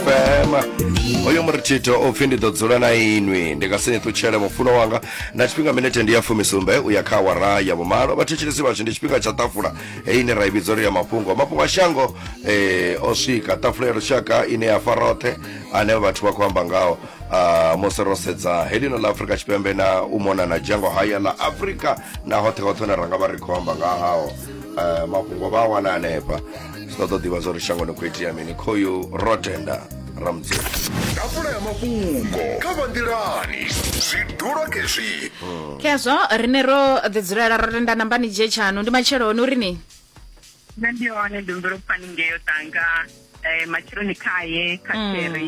fm oyo muritito upfi ndi ḓo dzula na inwi ndi nga si ni ṱutshele mufuno wanga na tshifhinga minete ndi ya fumisumbe u ya kha awara ya vhumalo vhathetshelesi vhashu ndi tshifhinga tsha ṱafula heyi ine ra i vhidza uri ya mafhungo mafhungo a shango eh, o swika ṱafula ya lushaka ine ya fa roṱhe ane vhathu vha khou amba ngaho Ah, musi ro sedza helino ḽa afurika tshipembe na u mona na dzhango haya ḽa afurika na hoṱhe hoṱhe hune ra nga vha ri khou amba nga hao Eh, mafhungo vha a wana hanefha zwi ṱoḓa u ḓivha zwa uri shangoni khou itea mini khoyu ro tenda ramdzeni tafula ya mafhungo kha vanḓilani zwidulo kezwi khezwo rine ro ḓi dzulela ro tenda nambani dzhie tshanu ndi matsheloni uri ni nṋe ndi hone ndi humbela u pfani ngeyo tanga um matsheloni khaye kha Mm. kheri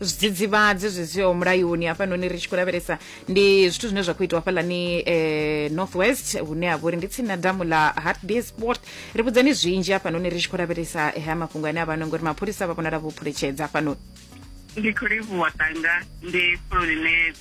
zwidzidzivhadzi zwi siho mulayoni hafhanoni ri tshi khou lavhelesa ndi zwithu zwine zwa khou itiwa hafhaḽani eh, north west hune ha vha uri ndi tsini na damu la hartbeer sport ri vhudzani zwinzhi hafhanoni ri tshi khou lavhelesa eh, haya mafhungo ane a vha no ngori mapholisa vha vhonala vho phuletshedza hafhanoni ndi khou livhuwa tanga ndi fuloni ne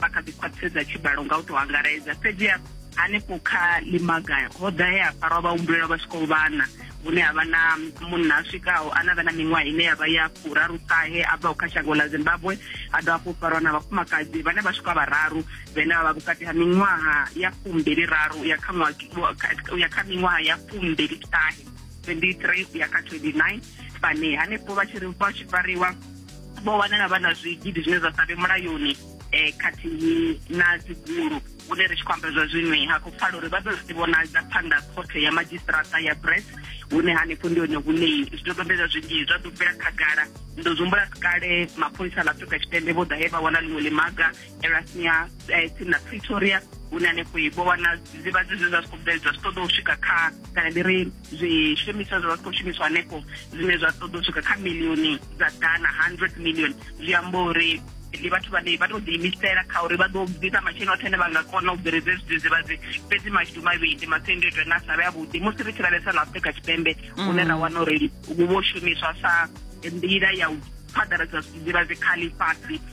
vha kha ḓi khwaṱhisedza tshibalo nga u tou angaredza fhedziha hanefho kha limaga ho ḓa he a farwa vhahumbulelwa vha swikaho vhana hune ha vha na munna a swikaho a na vha na miṅwaha ine ya vha ya furaru ṱahe a bvaho kha shango ḽa zimbabwe a dovha hafhu farwa na vhafumakadzi vhane vha swika vhararu vhene vha vha vhukati ha miṅwaha ya fumbili raru ya kha ya kha miṅwaha ya fumbili ṱahe 23 ya kha 29 vhane hanefho vha tshi ri vha tshi fariwa vho wanala vha na zwigidi zwine zwa sa vhe mulayoni um khathihi na dzigulu hune ri tshi khou amba zwa zwinoi ha khou pfala uri vha ḓo zwi vhonadza phanḓa khothe ya madzhisiṱirata ya bress hune hanefho ndi hone hune zwidodombedzwa zwinzhi zwa ḓo bvela khagala ndo zwi humbula kale mapholisa ḽa afrika tshipembe vho ḓa he vha wana ḽiṅwe ḽimaga erasmia eh, tsini na pretoria hune hanefho vho wana zivhadzi zwe zwa zwi khou bveledzwa zwi ṱoḓa u swika kha kana ndi ri zwishumiswa zwa vha zwi khou shumiswa hanefho zwine zwa ṱoḓa u swika kha milioni dza dana hundred million zwi amba uri ndi vhathu vhane vha tou ḓiimisela kha uri vha ḓo bvisa masheleni oṱhe ane vha nga kona u bveledza zwidzidzivhadzi fhedzi mashudu mavhili masiandoitwa ane a sa vhe avhuḓi musi ri tshi lavhelesa na afrika tshipembe mm. hune ra wana uri vho shumiswa sa nḓila ya u phaḓaladza zwidzidzivhadzi kha ḽifhasi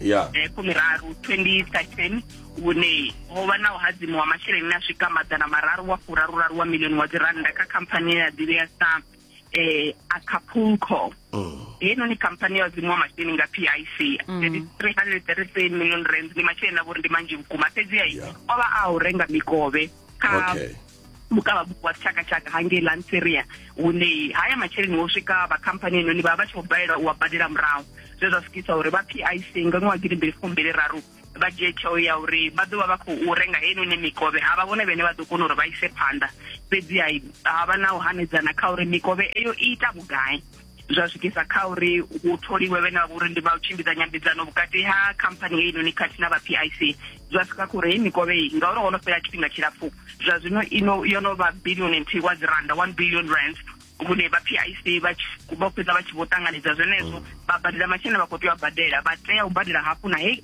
yeah. eh, fumiraru 2013 hune ho vha na u hadzimu wa masheleni a swika maḓana mararu wa furaruraru wa milioni wa dzirannda kha khamphani ya ḓivhea sa eh, acapulco mm. heinoni khamphani ya hadzimu wa masheleni nga pic 333 mm. million rand ndi masheleni a vhori ndi manzhi vhukuma fhedzi ai o vha a u renga mikovhe kha okay. vhukavhabuku wa tshakatshaka hangei lanseria hune haya masheleni wo swika vha khamphani inoni vha vha tshi khou balelwa u wa badela murahu zwe zwa swikisa uri vha pic nga ṅwaha gidimbili fumbili raru vha dzhie tsheo ya uri vha ḓo vha vha khou renga heinoni mikovhe ha vha vhone vhene vha ḓo kona uri vha ise phanḓa fhedzi ha vha na u hanedzana kha uri mikovhe eyo i ita vhugai zwa swikisa kha uri u tholiwe vhene vha vha uri ndi vha u tshimbidza nyambedzano vhukati ha khamphani heyi noni khathihi na vha p i c zwa swika kha uri heyi mikovhe iyi ngauri ho no fhela tshifhinga tshilapfu zwa zwino ino yo no vha billion and wa dzi randa one billion rand vhune vha p i c vho fhedza vha tshi vho ṱanganedza zwenezwo vha badela masheleni vha khou tea u a badela vha tea u badela hafhu na heyi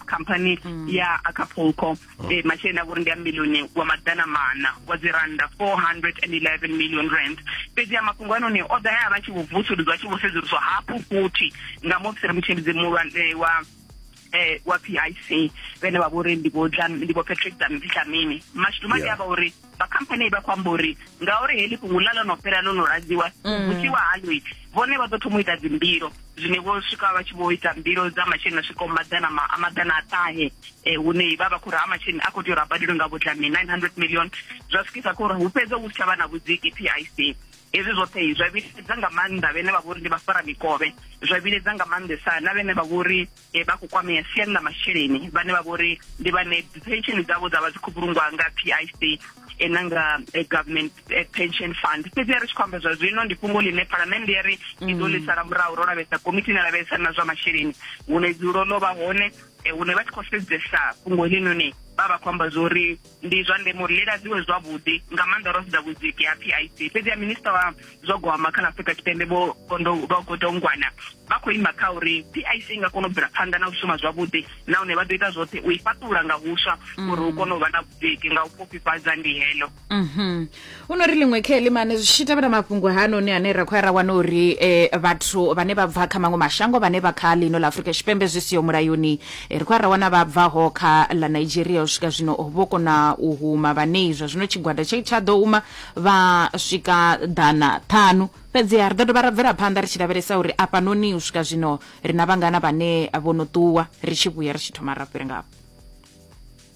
khamphani ya acapulco e, masheleni a vhori ndi a milioni wa maḓana mana wa dzi rannda 411 million rand fhedzi a mafhungo anoni o ḓa ya vha tshi vho vusuludzwa a tshi vho sedzuluswa hafhu futhi nga muofisiri mutshimbidzi muhulwane wa eh wa PIC vhene vha vhori ndi vho Dlam- ndi vho Patrick Dlam- Dlamini mashudu madi Yeah. a vha uri vha khamphani vha khou amba uri ngauri heḽi fhungo ḽa ḽo no fhela ḽo no ladziwa mm. vhusiwa haloi vhone vha ḓo thoma u ita dzimbilo zwine vho swika vha tshi vho ita mbilo dza masheleni a swikaho maḓana a maḓana a ṱahe um hune vha vha khou uri ha masheleni a khou tea uri a badelwe nga vhudlami nine hundred million zwa swikisa kho uri hu fhedze hu si tsha vha na vhudziki p i c hezwi zwoṱhe zwa vhiledza nga maanḓa vhene vha vhori ndi vha fara mikovhe zwa vhiledza nga maanḓesa na vhene vha vhori e vha khou kwamea siani ḽa masheleni vhane vha vho ri ndi vhane pension dzavho dza vha dzi khou vhulungwa nga PIC e na nga government pension fund fhedzi ya ri tshi khou amba zwa zwino ndi fhungo ḽine phalamennde ya ri i ḓo ḽi sala murahu ro lavhelesa komiti ine lavhelesa na zwa masheleni hune dzulo ḽo vha hone hune vha tshi khou sedzesa fhungo heḽinoni vha vha khou amba zwo ri ndi zwa ndeme uri ḽi ladziwe zwavhuḓi nga maanḓa ro sedza vhudziki ha pic fhedzi ya minista wa zwa gwama kha ḽa afurika tshipembe vho godongwana vha khou ima kha uri pic i nga kona u bvela phanḓa na u shuma zwavhuḓi nahone vha ḓo ita zwoṱhe u i fhaṱula nga huswa mm. uri hu kone u vha na vhudziki nga u fhufhifhadza ndi heḽo mhm. hu no ri ḽiṅwe kheli mane zwi tshi tevhela mafhungo hanoni ane ra khou ya ra wana uri eh, vhathu vhane vha bva kha maṅwe mashango vhane vha kha ḽino ḽa afurika tshipembe zwi siho mulayoni eh, ri khou ya ra wana vha bvaho kha ḽa nigeria u swika zwino vho kona u huma vhanei zwa zwino tshigwada tshe tsha ḓo huma vha swika ḓana ṱhanu fhedziha ri ḓo dovha ra bvela phanḓa ri tshi lavhelesa uri afhanoni u swika zwino ri na vhangana vhane vho no ṱuwa ri tshi vhuya ri tshi thoma ra fhira ngafho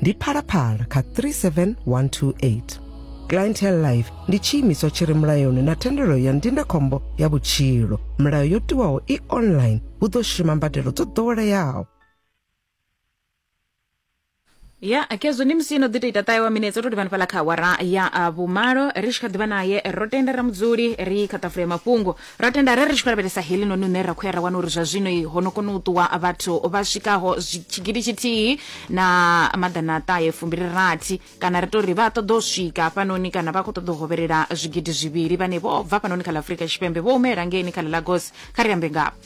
ndi phalaphala kha 37128 clientele life ndi tshiimiswa tshi re mulayoni na thendelo ya ndindakhombo ya vhutshilo milayo yo tiwaho i online hu ḓo shuma mbadelo dzo ḓoweleaho ya akezwo ndi musino ḓi to ita ṱahe wa minetse u to livhani fhala kha awara ya ah, vhumalo ri tshi kha ḓivha naye ro tenda ra mudzuli ri kha ṱafula ya mafhungo Ra tenda arali ri tshi khou lavhelesa heḽinoni une ra khou ya ra wana uri zwa zwino ho no kona u ṱuwa vhathu vha swikaho tshigidi tshithihi na maḓana a ṱahe fumbili-rathi kana ri tou ri vha ṱoḓa u swika hafhanoni kana vha khou ṱoḓa u hovhelela zwigidi zwivhili vhane vho bva hafhanoni kha ḽa Afurika Tshipembe vho humela ngeeni kha ḽa Lagos kha ri ambe ngavho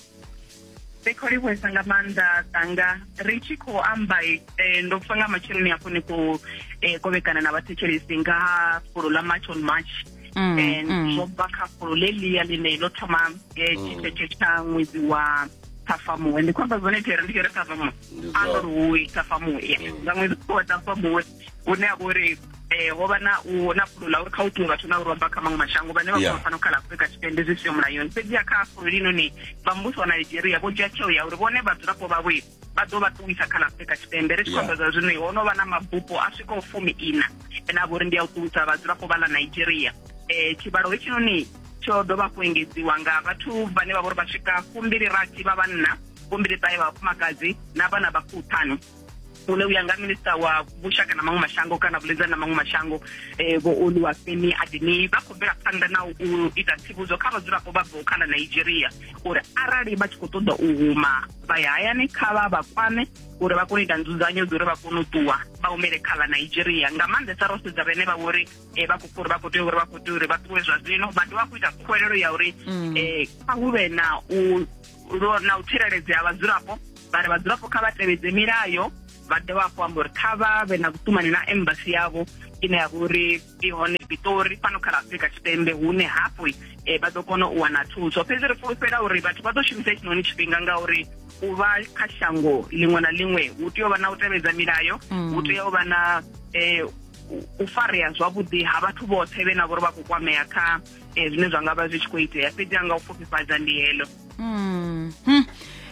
Ri khou livhuwesa nga maanḓa tanga ri tshi khou amba eh, ndo pfa nga matsheloni hafho ni khou eh, kovhekana na vhathetshelesi nga fulo ḽa march on march mm, eh, mm. zwo bva kha fulo ḽe ḽia ḽine ḽo thoma eh, mm. tshithethe tsha ṅwedzi wa ṱhafamuwe ndi khou amba zwone thera ndi kere ṱhafamuwe a ndo ri woi ṱhafamuwe nga ṅwedzi wa ṱhafamuwe hune a vha uri um eh, ho vha na u na fulo ḽa uri kha u ṱuwe vhathu na u romba kha maṅwe mashango vhane vha khou fana kha ḽa afurika tshipembe zwi siyo mulayoni fhedziha kha fulo linoni vha muvhuso wa nigeria vho dzhia tsheo ya uri vhone vhadzulapo vhavho vha ḓo vha ṱuwisa kha ḽa afurika tshipembe ri tshi khou zwa zwino ho no vha na mabupo a swikaho fumi ina ane a vha uri ndi a u ṱuwisa vhadzulapo vha ḽa nigeria um tshivhalo hetshinoni tsho ḓo vha kuengedziwa nga vhathu vhane vha vha uri vha swika fumbili rathi vha vhanna fumbili ṱahe vha vhafumakadzi na vhana vha fuṱhanu ule u ya nga minista wa vhushaka na maṅwe mashango kana vhuḽedzani na maṅwe mashango um vho oluwafemi adini vha khou bvela phanḓa na u ita tsivhudzo kha vhadzulapo vha bvaho kha ḽa nigeria uri arali vha tshi khou ṱoḓa u huma vha ya hayani kha vha vha kwame uri vha kone u ita nzudzanyo dza uri vha kone u ṱuwa vha humele kha ḽa nigeria nga maanḓesa ro sedza vhene vha vhori um vha khou uri vha khou tea uri vha khou tea uri vha ṱuwe zwa zwino vha dovha khou ita khuwelelo ya uri um kha hu vhe na u na u tsireledzea vhadzulapo vha ri vhadzulapo kha vha tevhedze milayo vha dovha hafhu amba uri kha vha vhe na vhutumani na embasi yavho ine ya vha uri i hone pitori fhano kha la afurika tshipembe hune hafhu um vha ḓo kona u wana thuso fhedzi ri fulufhela uri vhathu vha ḓo shumisa hetshinoni tshifhinga ngauri u vha kha shango ḽiṅwe na ḽiṅwe hu tea u vha na u tevhedza milayo mm. hu tea u vha na um u farea zwavhuḓi ha vhathu vhoṱhe vhe na vhori vha khou kwamea kha eh, zwine zwa nga vha zwi tshi khou itea fhedzi anga u pfufhifhadza ndi heḽo mm. hmm.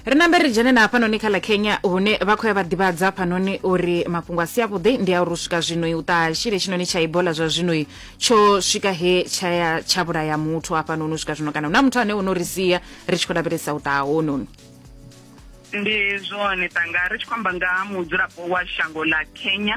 ri nambe ri dzhene na hafhanoni kha ḽa kenya hune vha khou ya vha ḓivhadza hafhanoni uri mafhungo a si avhuḓi ndi a uri u swika zwinoi u ṱaha tshile tshinoni tsha ibola zwa zwinoi tsho swika he tshaya tsha vhulaya muthu hafhanoni u swika zwino kana hu na muthu ane o no ri sia ri tshi khou lavhelesa u ṱaha hononi ndi zwone tanga ri tshi khou amba nga ha mudzulapo wa shango ḽa kenya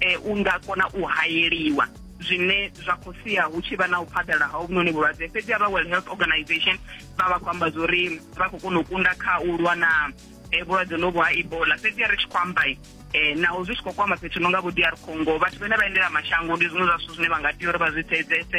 e, u nga kona u hayeliwa zwine zwa khou sia hu tshi vha na u phaḓala ha uvhunoni vhulwadze fhedzi a vha world health organization vha vha khou amba zwori vha khou kona u kunda kha u lwa na e, vhulwadze novho ha ebola fhedzi a ri tshi khou amba eh naho zwi tshi khou kwama fhethu no nga vho DR Congo vhathu vhane vha endela mashango ndi zwiṅwe zwa zwithu zwine vha nga tea uri vha zwi sedzese